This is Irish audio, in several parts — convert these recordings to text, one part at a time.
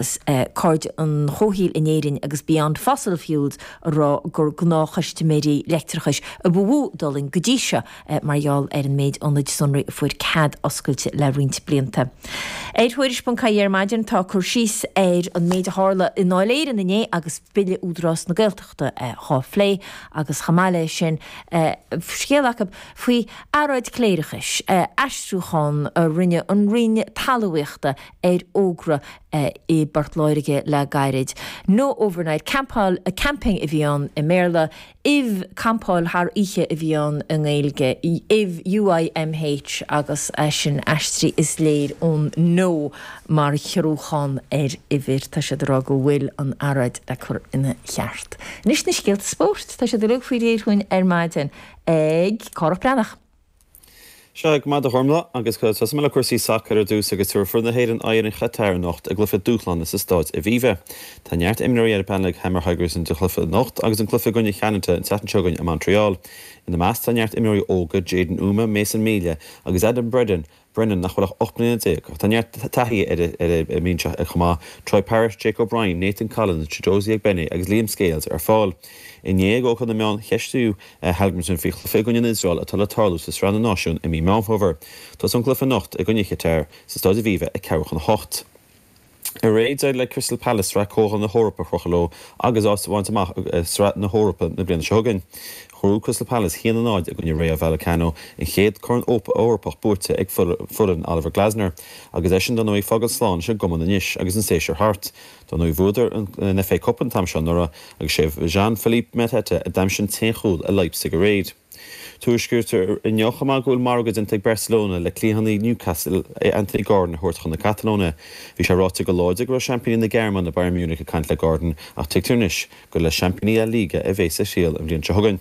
Cairde an Chomhshaoil in Éirinn agus Beyond Fossil Fuels ag rá gur gnáthchustaiméirí leictreachais a ba mhó a d'fhulaing go dtí seo mar gheall ar an méid ionad sonraí a fuair cead oscailte le roinnt blianta. Ar Thuairisc.ie ar maidin tá cur síos ar an méid a tharla i nDáil Éireann inné agus Bille Údarás na Gaeltachta á phlé agus chomh maith leis sin scéal acu faoi earráid cléireachais, aistriúchán a rinne an Roinn Talmhaíochta ar fhógra i bPort Láirge le gairid. No overnight campáil, camping a bhí ann i mBéarla, uimh, campáil thar oíche a bhí ann i nGaeilge, uimh, UIMH agus é sin aistrithe is léir ón No mar ghiorrúchán ar uimhir. Tá siad ag rá go bhfuil an earráid le cur ina cheart. Anois na scéalta spóirt. Tá siad uilig faoi réir chugainn ar maidin ag Cárthach Breathnach. Sea go raibh maith agat a Chormaic agus tosóidh mé le cúrsaí sacair ar dtús agus tabharfaidh fir na hÉireann aghaidh ar an Chatar anocht i gcluiche dúshláin sa Stáid Aviva. Tá neart imreoirí ar an bpainéal ag Heimir Hallgrimsson don chluiche anocht agus an cluiche i gcoinne Cheanada an tseachtain seo chugainn i Montreal. Ina measc tá neart imreoirí óga, Jaden Umeh, Mason Melia agus Adam Bredon, Brennan nach bhfuil ach 18 mbliana, tá neart taithí ina measc chomh maith, Troy Parrott, Jake O'Brien, Nathan Collins, Chidozie Ogbene agus Liam Scales ar fáil. Inné ag ócáid na meán cheistíodh. Hallgrimsson faoin gcluiche i gcoinne an Iosrael atá le tarlú sa Sraith na Náisiún i mí Meán Fómhair. Tosaíonn an cluiche anocht i gcoinne Chatar sa Stáid Aviva ag ceathrú chun a hocht. Aréir d'éirigh le Crystal Palace Sraith Comhdháil na hEorpa a chrochadh leo agus áit a bhaint amach i Sraith na hEorpa na bliana seo chugainn. Bhuaigh Crystal Palace 1-0 i gcoinne Rayo Vallecano, an chéad Chorn Eorpach buaite ag foireann Oliver Glasner agus eisean dar ndóigh ag fágáil slán leis an gcumann anois agus an séasúr thart. Dar ndóigh bhuadar an FA Cup an t-am seo anuraidh agus is é Jean Philippe Mateta a d'aimsigh an t-aon chúl i Leipzig aréir. Tuairiscítear inniu chomh maith go bhfuil margadh déanta ag Barcelona le cliathánaí Newcastle Anthony Gordon a thabhairt chun na Catalóine. Bhí sé ráite go láidir go raibh seaimpíní na Gearmáine Bayern Munich ag caint le Gordon ach tuigtear anois gur le seaimpíní La Liga a bheas a thriall an bhliain seo chugainn.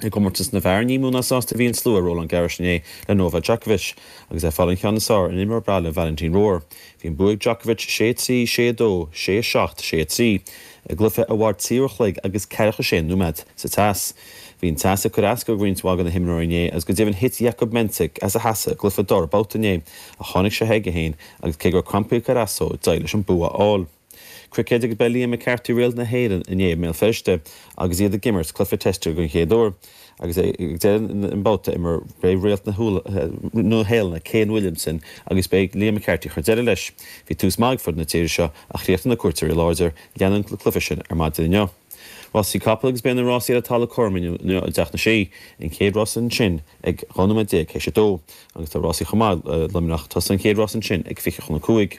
I gcomórtas na bhfear ní mó ná sásta a bhí an slua i Roland Garros inné le Novak Djokovic agus é ag fáil an ceann is fearr ar an imreoir baile Valentin Royer. Bhí an bua ag Djokovic, 6-3, 6-2, 6-7, 6-3, i gcluiche a mhair trí uair a chloig agus ceathracha sé nóiméad. Sa teas Bhí an teas ag cur as do roinnt mhaith de na himreoirí inné agus go deimhin thit Jakub Mensik as a sheasamh i gcluiche dara babhta inné ach tháinig sé chuige féin agus cé go raibh crampaí ag cur as dó, d'éirigh leis an bua a fháil. Cruicéid agus ba é Liam McCarthy réalt na hÉireann inné i mBéal Feirste agus iad ag imirt cluiche teiste den chéad uair agus é ag deireadh an babhta imeartha ba é réalt na Nua Shéalainne Kane Williamson agus ba é Liam McCarthy a chuir deireadh leis. Bhí tús maith ag foireann na tíre seo ach chríochnaigh na cuairteoirí láidir leanann an cluiche sin ar maidin inniu. Rásaí Capall agus Beidh na rásaí ar an talamh cothrom inniu i dTeach na Sí, an chéad rás ansin ag 12 nóiméad théis a dó agus tá rásaí chomh maith i Luimneach tosóidh an chéad rás ansin ag 20 chun a cúig.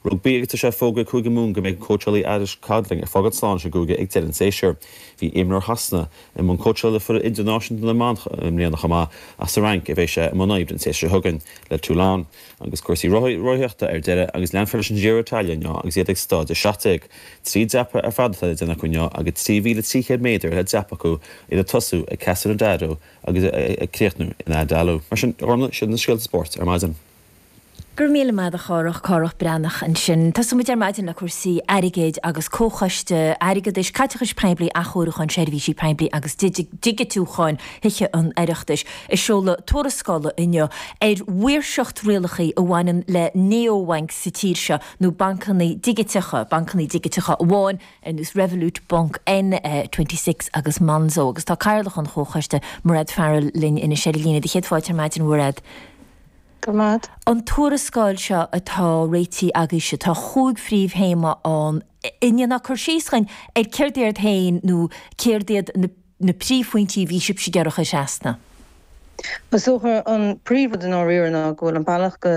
Rugbaí agus Tá sé fógraithe ag Cúige Mumhan go mbeidh an cóitseálaí Alex Codling ag fágáil slán leis an gcúige ag deireadh an tséasúir. Bhí imreoir Shasana i mbun cóitseála le foireann idirnáisiúnta na mban i mbliana chomh maith ach sa Fhrainc a bheidh sé i mbun oibre an tséasúir seo chugainn le Toulon. Agus cúrsaí rothaíochta ar deireadh agus leanfar leis an Giro d'Italia inniu agus iad ag Stáid 17. Trí dhreapadh ar fad atá le déanamh acu inniu agus 3,300 méadar le dreapadh acu idir tosú ag Cassano d'Adda agus ag críochnú in Andalo. Mar sin, Orna, sin na scéalta spóirt ar maidin. Go raibh míle maith agat a Chárthaigh, Cárthach Breathnach ansin. Tosóidh muid ar maidin le cúrsaí airgid agus Comhchoiste Airgeadais, Caiteachais Phoiblí, Athchóiriúcháin Seirbhísí Poiblí agus Digitiúcháin Thithe an Oireachtais. ag seoladh tuarascála inniu ar mhaoirseacht rialacha a bhaineann le néo-bhainc sa tír seo, nó bancanna digiteacha, bancanna digiteacha amháin ar nós Revolut, Bunq, N26 agus Monzo. Agus tá Cathaoirleach an Chomhchoiste, Mairéad Farrell, linn anois ar líne. Tá céad fáilte ar maidin, a Mhairéad. Grma. An tuarascáil seo atá réitithe agaibhse, tá chúig phríomh-théama ann. An ndéanfá cur síos dhúinn ar céard iad féin nó céard iad na. na príomhphointí a bhí sibhse ag iarraidh a chur trasna? Is dócha an príomh rud i ndáiríre ná go bhfuil an bealach go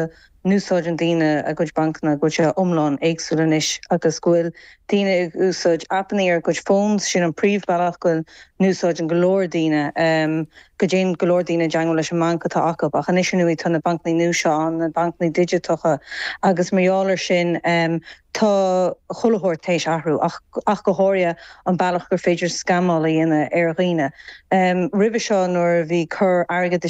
n-úsáideann daoine a gcuid bancanna, go bhfuil sé iomlán éagsúil anois agus go bhfuil daoine ag úsáid appannaí ar a gcuid phones, sin an príomh bealach go n-úsáideann go leor daoine, go dtéann go leor daoine i dteangmháil leis an mbanc atá acu. Ach anois ar ndóigh tá na bancannaí nua seo ann, na bancannaí digiteacha, agus mar gheall ar sin, Tá chuile shórt théis athrú, ach go háirithe an bealach gur féidir scammáil a dhéanamh ar dhaoine. Roimhe seo nuair a bhí coir airgeadais